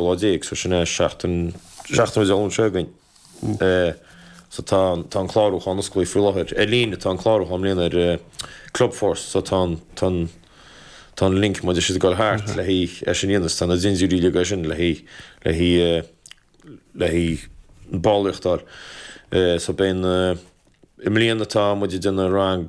Lá déag, so sin é seachtain, seachtain is ón lá sin againn. So tá an, tá an clárúchán osclaithe faoi láthair. Ar líne, tá an clárúchán i mbliana ar Clubforce, so tá an, tá an, tá an link, muid é siod ag dul thart le haghaidh é sin a dhéanamh, so tá na dintiúirí uilig air sin le haghaidh, le haghaidh, le haghaidh an ballraíocht a fháil. So beidh na, i mbliana tá muid ag déanamh rang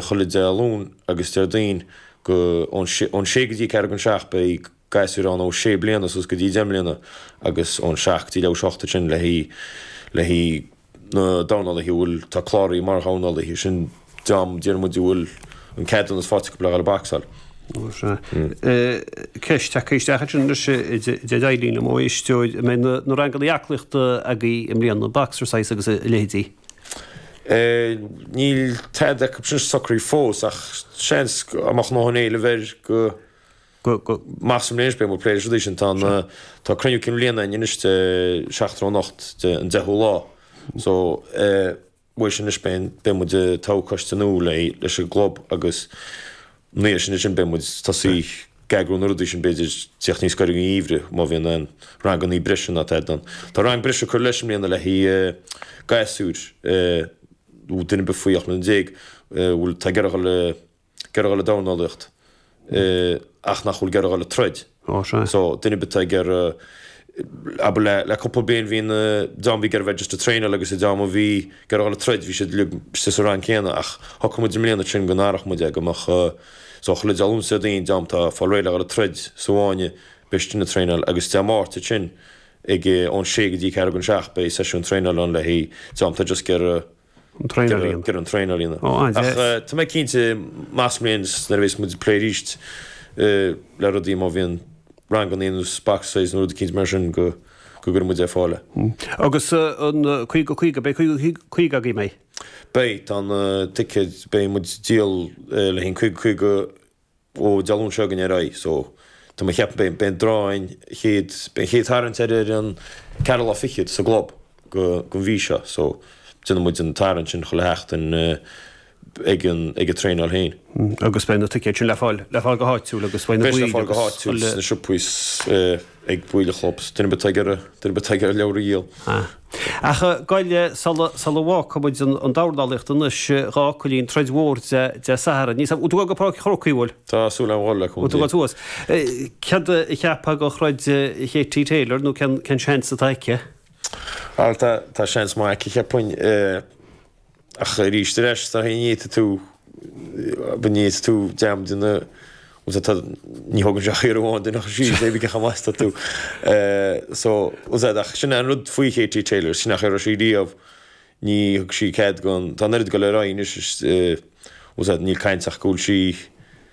chuile Dé Luain agus Déardaoin go, ón sé, ón sé go dtí ceathrú go dtí an seacht beidh Gasúir ann ó sé bliana suas go dtí deich mbliana agus ón seacht dtí leathuair tar éis a hocht ansin le haghaidh na dornálaithe a bhfuil, tá cláraithe mar dhornálaithe, sin dream, déarfaidh muid, a bhfuil an ceadúnas faighte acu pléigh le bacsáil. Ó sea. Ceist, tagtha isteach ansin anois ó Eileen ó éisteoir, an mbeidh na ranganna aclaíochta agaí i mbliana, Boxercise agus a leithéidí? Níl tada acu sin socraithe fós, ach seans go, amach ó na héilimh air, go. go measaim anois, beidh muid ag plé leis arís, tá an, tá cruinniú cinn bhliana againn anois seachtain ó anocht, de, an deichiú lá. So, eh, uaidh sin anois beidh, beidh muid ag toghadh coiste nua le, leis an gclub agus ina dhiaidh sin ansin beidh muid, tosóidh ag eagrú na rudaí sin b'fhéidir ag teacht níos gaire don gheimhreadh má bhíonn aon rangannaí breise ná tada ar bun, tá rang breise ag cur leis i mbliana le haghaidh, eh, gasúir, eh, nó duine ar bith faoi ocht mbliana déag, eh, a bhfuil, tá ag iarraidh a dhul, eh, ag iarraidh dul le dornálaíocht ach nach bhfuil ag iarraidh dul le troid. So, duine ar bith ag iarraidh abair le le cúpla bliain bhí na dream a bhí ag iarraidh just le traenáil agus na dream a bhí ag iarraidh dul le troid bhí siad uilig sa sa rang céanna ach shocraigh muid i mbliana ansin go n-athródh muid é go mbeadh so chuile dream ansin den dream tá ag fáil réidh le dhul le troid sa bhfáinne beidh siad istigh ag traenáil agus Dé Máirt ansin ag ón sé go dtí ceathrú go an seacht beidh seisiún traenáil ann le haghaidh dream tá just ag iarraidh An traenáil a dhéanamh. Gur an traein ar líne. Ó, an-deas. Ach tá mé cinnte, measaim i mbliana, nuair a bhéas muid ag plé arís le rudaí, má bhíonn ranganna nó Boxercise nó rudaí eicínt mar sin, go gcuirfidh muid ar fáil. Agus an caoga caoga, beidh caoga caoga agaibh, beidh? Beidh, tá na ticéid, beidh muid ag díol le haghaidh an caoga caoga Ó, Dé Luain seo chugainn ar aghaidh. So, tá mé ag ceapadh, beidh an draw an chéad, beidh an chéad tarraingt ar ar an ceathrú lá fichead sa gclub go, den mhí seo. So, déanfaidh muid an tarraingt sin chuile sheachtain ag an, ag an traenáil féin. Agus beidh na ticéid sin le fáil, le fáil go háitiúil agus beidh na Beidh sé le fáil go háitiúil sna siopaí agus ag baill an chlub. Duine ar bith atá ag iarraidh, duine ar bith atá ag iarraidh leabhar a dhíol. Ah. Ach gabh i leith sula bhfágfaidh muid an dornálaíocht anois, a Chóilín troid mhór Dé Sathairn. Ní sam. An bhfuil tú ag dul go Páirc an Chrócaigh. Tá súil agam a dhul le cúnamh Dé. An bhfuil tú ag dul suas. Cad a cheapfá den throid Katie Taylor nó cén seans atá aici? Bhal, tá seans maith aici, cheapfainn. Ach arís ar ais, tá ní fhéadfaidh tú, ní fhéadfaidh tú dream de na, bhuel tá, tá, ní thógann sé ach iarraidh amháin duine a chur síos maybe cé chomh maith is atá tú. So, bhfuil fhios agat, ach sin é an rud faoi Katie Taylor, sin é an chaoi a raibh sí riamh, ní thug sí cead gon, tá an oiread ag dul ar aghaidh anois is, bhfuil fhios agat, níl caint ach go bhfuil sí,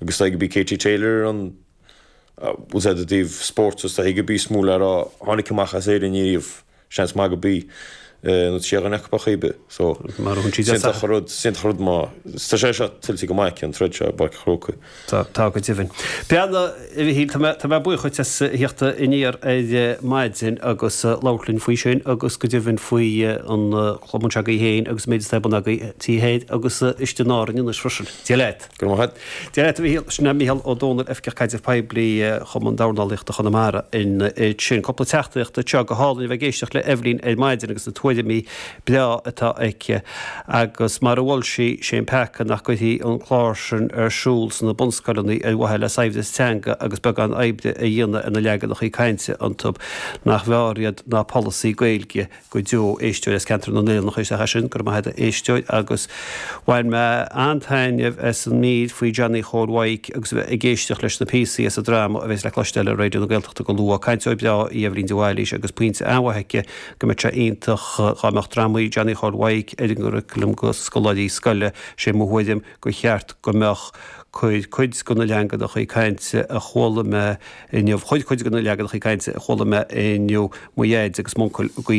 agus is dóigh gurb í Katie Taylor ar an, bhfuil fhios agat, i dtaobh spóirt agus is dóigh gurb í is mó le rá tháinig amach as Éirinn ariamh, seans maith gurb í, nó sí duine acu ar chaoi ar bith. So, is iontach an rud, is iontach an rud mar, tá sé seo tuillte go maith aici an troid seo i bPáirc an Chrócaigh. Tá, tá go deimhin. Bhuel, a Mhichíl, tá mé, tá mé buíoch duit as theacht aniar ar maidin agus labhairt linn faoi sin agus go deimhin faoi an cumann s'agaibh féin agus an méid atá ar bun agaibh, taobh thoir agus istigh in Árainn anois freisin. Dia leat. Go raibh maith agat. Dia leat, a Mhichíl. Sin é Micheál Ó Domhnaill, Oifigeach Caidrimh Poiblí, Chumann Dornálaíochta Chonamara. Ansin, cúpla teachtaireacht anseo. Go hálainn a bheith ag éisteacht le Eibhlín ar maidin agus na tuairimí breá atá aici. Agus mar a mhol sí, sé an peaca nach gcuirfí an clár sin ar siúl sna bunscoileanna ar mhaithe le saibhreas teanga agus beagán oibre a dhéanamh ar na leaganachaí cainte iontu nach mb'fhearr iad ná polasaí Gaeilge go deo, éisteoir as ceantar na nOileán a chuir isteach é sin, go raibh maith agat a éisteoir agus bhain mé an-taitneamh as an mír faoi Johnny Chóil Mhaidhc agus a bheith ag éisteacht leis na píosaí as an dráma a bheas le cloisteáil ar Raidió na Gaeltachta go luath. Cainteoir breá í Eibhlín de Bhailís agus pointe an-mhaith aici go mbeadh sé iontach dá mbeadh drámaí Johnny Chóil Mhaidhc ar an gcuraclam go scoláirí scoile. Sé mo thuairim gur cheart go mbeadh. Chuir cuid go na leaganachaí cainte a chuala mé inniu mo dhaid agus m'uncail i gcuimhne